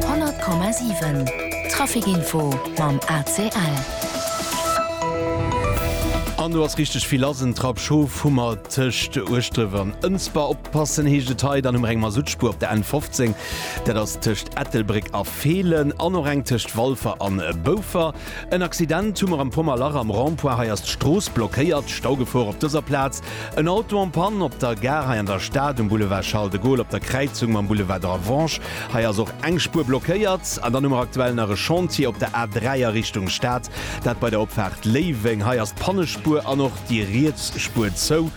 100,7 Trafic info mam ACL. An do ass richteg vill lass, en Trapp Schof hu mer tëscht Ueschdref an Ënsber. Oppassen heescht et hei, dann hu mer eng Masuttspuer op der N 15, dat ass tëscht Ettelbréck a Feelen, an och eng tëscht Walfer an Boufer. En Accident hu mer am Pommerlach am Rond-point. Hei ass d'Strooss blockéiert, Staugefor op dëser Plaz. En Auto en panne op der Gare hei an der Stad, um Boulevard Charles de Gaulle op der Kräizung mam Boulevard de la Vange. Hei ass och eng Spuer blockéiert. An dann hu mer aktuell nach e Chantier op der A3 a Richtung Stad, dat bei der Opfaart Léiweng. Hei ass d'Pannespuer an och déi riets Spuer zou.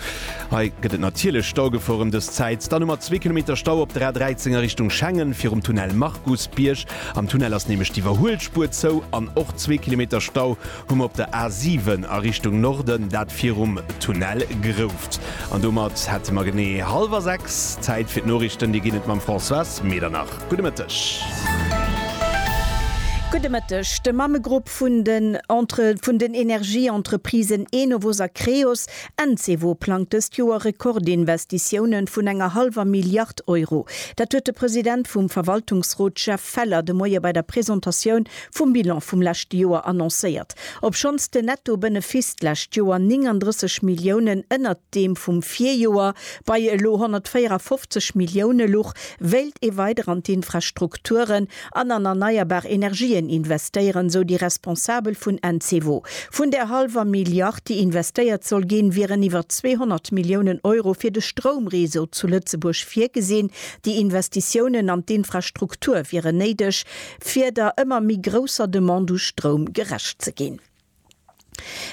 Hei gëtt et natierlech Staugefor ëm dës Zäit. Dann hu mer zwee Kilometer Stau op der A13 a Richtung Schengen virum Tunnel Markusbierg. Am Tunnel ass nämlech d'Iwwerhuelspuer zou an och zwee Kilometer Stau hu mer op der A 7 a Richtung Norden, dat virum Tunnel Grouft. An domat hätte mer genee hallwer sechs. Zäit fir d'Noriichten, déi ginn et mam Françoise Medernach. Gudde Mëtteg. Gudde Mëtteg. De Mammegrupp vun den Entre vun den Energieentreprisen Enovos a Creos Encevo plangt dëst Joer Rekordinvestitiounen vun enger hallwer Milliard Euro. Dat huet de President vum Verwaltungsrot Jeff Feller de Moie bei der Presentatioun vum Bilan vum leschte Joer annoncéiert. Obschonns den Netto-Benefiss d'lescht Joer 39 Milliounen ënnert deem vum Virjoer bei elo 154 Millioune luch, wéilt ee weider an d'Infrastrukturen an an erneierbar Energien investéieren, sou déi Responsabel vun Encevo. Vun där hallwer Milliard, déi investéiert soll ginn, wieren iwwer 200 Milliounen Euro fir de Stroumreseau zu Lëtzebuerg virgesinn. Déi Investitiounen an d'Infrastruktur wieren néideg, fir der ëmmer méi grousser Demande u Stroum gerecht ze ginn.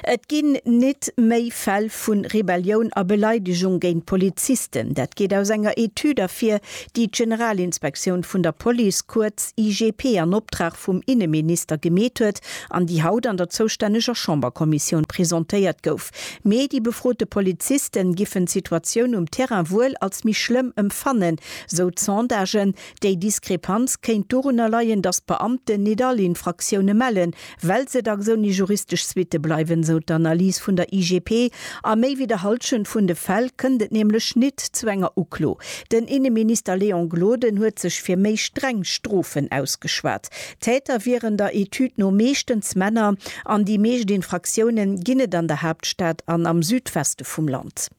Et ginn nit méi Fäll vu Rebellioun a Beleidegung géint Polizisten. Dat geet aus enger Etüd ervir, déi d'Generalinspektioun vun der Police, kuerz IGP, an Optrag vum Inneminister gemeet huet an déi haut an der zoustänneger Chamberkommissioun presentéiert gouf. Mee déi befrote Poliziste giffen d'Situatioun um Terrain wuel als méi schlëmm emfannen, sou d'Sondagen. Déi Diskrepanz kéint dorunner leien, datt d'Beamten nit all Infraktioune mellen, Well se dacks ouni juristesch Suitte bleiwen, sou d'Analys vun der IGP. A méi wéi der Hallschent vun de Fäll kënnt et nämlech nit zu enger Uklo. Den Inneminister Léon Gloden huet sech fir méi streng Strofen ausgeschwat. Täter wieren der Etüd no meeschtens Männer an déi meescht Infraktioune ginn et an der Haaptstad an am Südweste vum Land.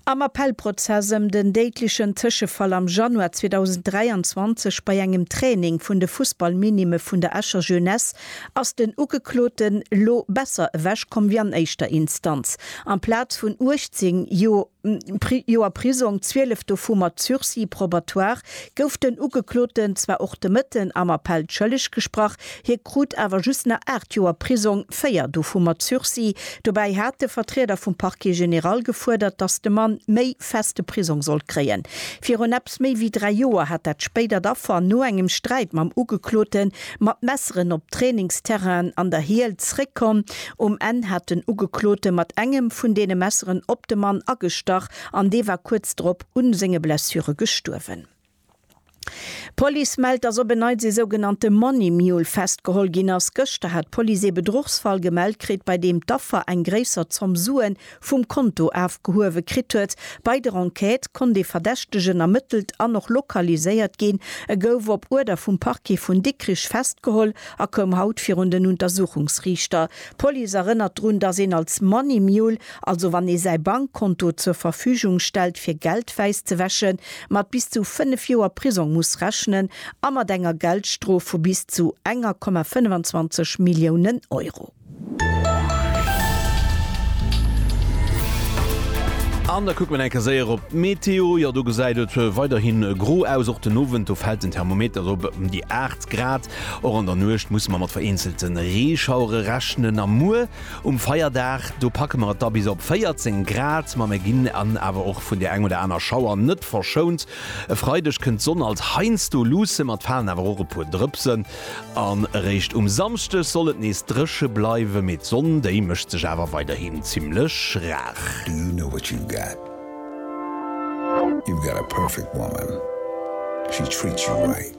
Am Appellprozess ëm den déidlechen Tëschefall am Januar 2023 bei engem Training vun de Fussballminime vun der Escher Jeunesse ass den Ugekloten lo besser ewech komm wéi an éischter Instanz. Amplaz vun 18 Joer Prisong, 12 dovu mat Sursis probatoire, gouf den Ugekloten zwar och de Mëtten am Appell schëlleg gesprach, Hie krut awer just nach aacht Joer Prisong, véier dovu mat Sursis. Dobäi hat de Vertrieder vum Parquet général gefuerdert, datt de Mann méi feste Prisong sollt kréien. Virun eppes méi wéi dräi Joer hat dat spéidert Affer no engem Sträit mam Ugeklote mat Messeren op Trainingsterrainen an der Hiel zeréckkomm. Um Enn hat den Ugeklote mat engem vun deene Messeren op de Mann agestach an dee war kuerz drop u senge Blessure gestuerwen. D'Police mellt, dass op en Neits ee sougenannte Money Mule festgeholl ginn ass. Gëschter hat d'Police ee Bedruchsfall gemellt kritt, bei deem d'Affer eng gréisser Zomm Sue vum Konto afgehuewe kritt huet. Bei der Enquête konnt ee Verdächtegen ermëttelt an och lokaliséiert ginn. E gouf op Uerder vum Parquet vun Dikrich festgeholl a koum haut virun den Untersuchungsriichter. D'Police erënnert drun, dass een als Money Mule, also wann ee säi Bankkonto zur Verfügung stellt fir Geld wäiss ze wäschen, mat bis zu 5 Joer Prisong muss rechnen a mat enger Geldstrof vu bis zu enger Komma 25 Milliounen Euro. An da kucke mer eng Kéier séier op d'Meteo. Jo, do gesäit et weiderhi gro aus, och den Owend. Do fält den Thermometer erop ëm déi 8 Grad. Och an der Nuecht musse mer mat vereenzelte Reeschauere rechnen a muer um Feierdag, do packe mer et da bis op 14 Grad. Ma mer ginn an awer och vun där eng oder aner Schauer net verschount. E Freideg kënnt d'Sonn als heiansdo luusse mat falen awer och e puer Drëpsen an. Eréischt um Samschdeg soll et nees dréche bleiwen, mee d'Sonn, déi mécht sech awer weiderhin zimmlech rar. Do you know what you've got? You've got a perfect woman, she treats you right.